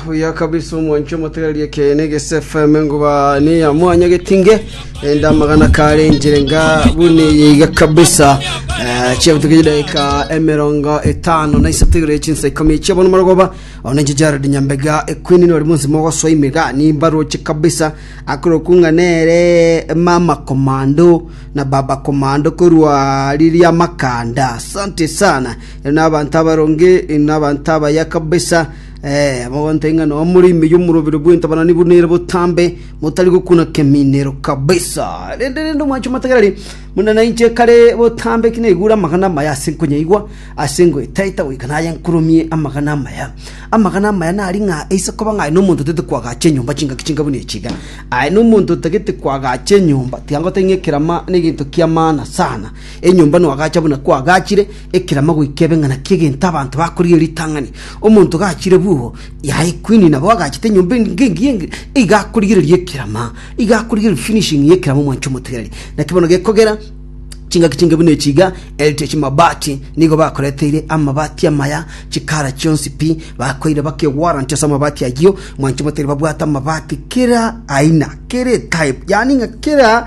Buya kabisa omwancho omotegereri ekeene gese FM nguba ni ya mwanya getinge enda magana kare njire nga buni yiga kabisa Eh, chiabutuka chidaika emerongo etano na isato igere chinsa ikomi chia bono marogoba ona nche Jared Nyambega ekwini nori munsi mogoswa imiga ni mbaroche kabisa akoro kunga nere mama komando na baba komando korwa riria makanda asante sana n'abanto abaronge, n'abanto abaya kabisa, eh, abagonta ing'ana bamore ime y'omorobero bw'entabanani buna ere botambe, motari gokuna keminero kabisa. Rende rende omwancho matagerari, muna nainche kare botambe ki naigure amagana amaya ase nkonyaigwa, ase ngoetaeta goika naye nkurumie amagana amaya. Amagana amaya nari ng'a aise koba ng'a aye nomonto otagete koagacha enyomba chingaki chinga buna echi iga. Aye nomonto otagete koagacha enyomba, tiga ngotebi ng'a ekerama negento ki'amaana sana. Enyomba noagacha buna kwagachire ekerama goika ebe ng'ana ki'egento abanto bakorigia ritang'ani. Omonto gachire bw'ogo yaye kwini nabo agachete enyomba ng'engiya engiya, iga akorigereria ekerama, iga akorigereria finishing y'ekerama omwancho omotigareri. Naki bono gekogera chingaki chinge buna echi iga, Heritage Mabati nigo bakoreteire amabati amaya chikara chionsi pi, bakoeire baka ewarranty ase amabati ayio, mwancho omotigareri babwate amabati kera aina, kera etype, yaani ng'a kera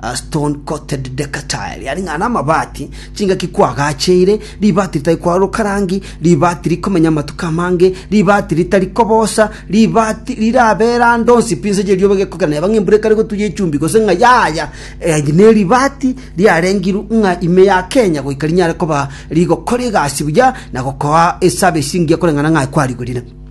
A stone-coated deck-chair riarenge aane amabati, chingaki kwagacheire, ribati ritari kwaruruka rangi, ribati rikomenya amatuko amange, ribati ritari kobosa, ribati rirabeera ande onsi pi inse y'erioba egekogera neba ng'a embura ekare gotuya echumbi gose ng'a yaya. Eh, neribati riarengirwe ng'a ime ya Kenya goika rinyare koba rigokora egasi buya na gokoa eservice engiya koreng'ana ng'a kwarigorire.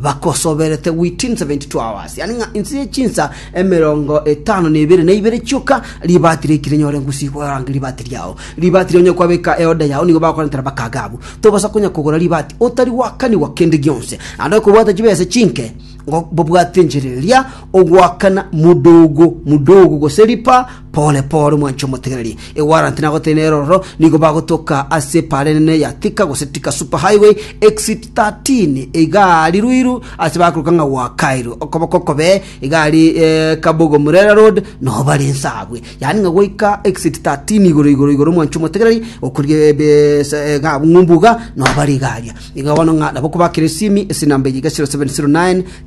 Bakosoberete within 72 hours, yaani ng'a inse ye chinsa emerongo etano na ebere na ibere chioka ribaati riaikire nyore ngusi gorange ribaati riao. Ribaati ria onye kwabeka eoda yao nigo bagokorentera bakaga abwo. Tobaasa konya kogora ribaati otari gwakanigwa kende gionse. Naende okobwata chibesa chinke ngo bobwate enchera eria ogoakana modogo modogo gose ripa Pore pore mwanche omotegereri, ewaranti nagotire nerororo nigo bagotoka ase epaara enene ya Thika gose Thika Super Highway, Exit 13, egari ruiru ase bakoruka ng'a gwa Kairu, okoboko okobe egari eh, Kabogo Murera Road nobare ense agwe, yaani ng'a goika Exit 13 igoro igoro igoro mwanche omotegereri okorigia ebe sa- eh, ng'a ng'umbuga nobare egaria iga bono ng'a nabo kobakera esimi ase enamba eye iga 0709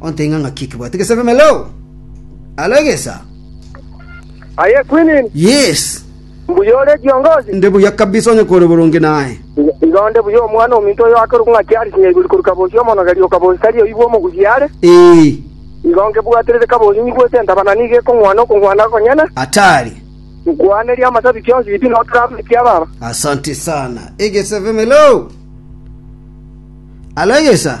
Onteng'a ng'aki ekebwate gesabe meloo? Alo egesa? Aye Quinine. Yes. Mbuya ore kiongozi? Nde buya kabisa onye kore boronge naye. Igo nde buya omwana ominto oyo akerokwa ng'a kiari kinya igori korwa kabosi omonogeri o kabosi tari oibwa omogusi are. Ee. Igo nkebwaterete kabosi nyigwete entabana nigo ekong'wana okong'wana konyene. Atari. Nkwaneria amasabi kionsi yipi na otrabu ekia baba. Asante sana. Egesabe meloo? Alo egesa?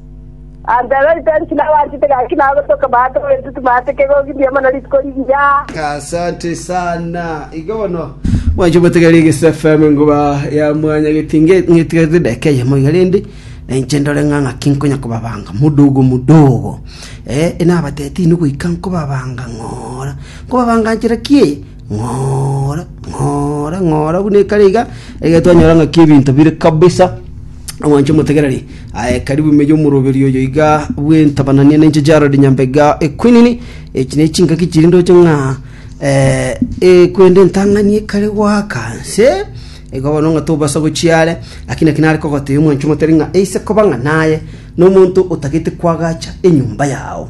Antero ritari tinabanchete gaki nagotoka maate oberete timaate kegogi mbuya mono rituko rigiya. Asante sana. Igo bono mwanche obotegera Egesu FM engoba ya mwanya getinge ng'etigarete edeka eyemo iga rende na inche ndore ng'a ng'aki nkonya kobabanga mudogo mudogo. Eh, nabatete inwe goika nkobabanga ng'ora. Nkobabanga nchera ki eye? ng'ora, ng'ora, ng'ora, buna ekare iga, egere twanyora ng'aki ebinto bire kabisa, omwancho omotegereri, aye karibu ime y'omoroberi oyo iga bw'entabananie na inche Jared Nyambega Equinini, echi ne chingaki chiri ndoche ng'a eh, ekwende entang'ani ekare goaka nse, igo bono ng'a tobasa gochia are, lakini naki nare kogotebia omwancho omotari ng'a eise koba ng'a naye na omonto otagete kwagacha enyomba yao.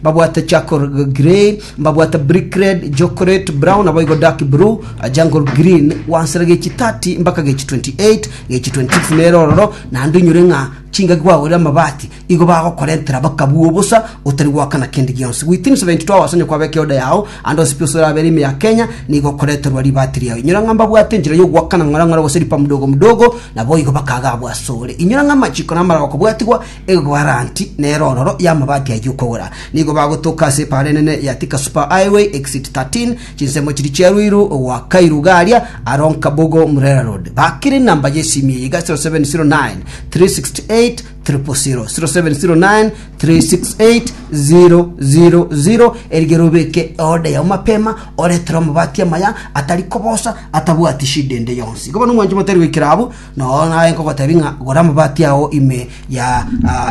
Mbabwate charcoal grey, mbabwate brick red, chocolate brown, naboigo dark blue, jungle green, gwansera gechi 30 mpaka gechi 28, gechi 26 nere ororo, naende onyore ng'a chingaki gwagorire amabati, igo bagokorentera bakabua obosa, otari goakana kende gionsi. Within 72 hours onye kwabeka eoda yao, ande ase pi osore abere ime ya Kenya, nigo okoreterwa ribati riao. Inyora ng'a mbabwate enchera yogoakana ng'ora ng'ora gose ripa mdogo mdogo, naboigo bakaga abwo asore. Inyora ng'a amachiko na amarabako bwatigwa, Eguaranti nere ororo y'amabati ayio okogora. Nigo bagotoka ase epaara enene ya Thika Super Highway, Exit 13, chinsemo chiria chia Ruiru goaka Irugaria, aro Nkabogo, Murera Road. Bakire enamba y'esimi eye iga 0709 368 000, 0709 368 000, erigere obeke order yao mapema, oretere amabati amaya atari kobosa, atabwati shida ende yonsi. Igo bono omwancho motari goikera abwo, Nonya naye nkogotebi ng'a gora amabati ao ime ya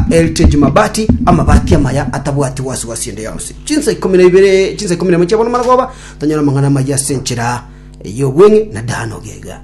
Heritage Mabati, amabati amaya atabwati gwasi-gwasi ende yonsi. Chinsa ikomi na ibere, chinsa ikomi na emo chiabono maragoba, tonyora amang'ana amayia ase enchera y'obweng'e na daano gega.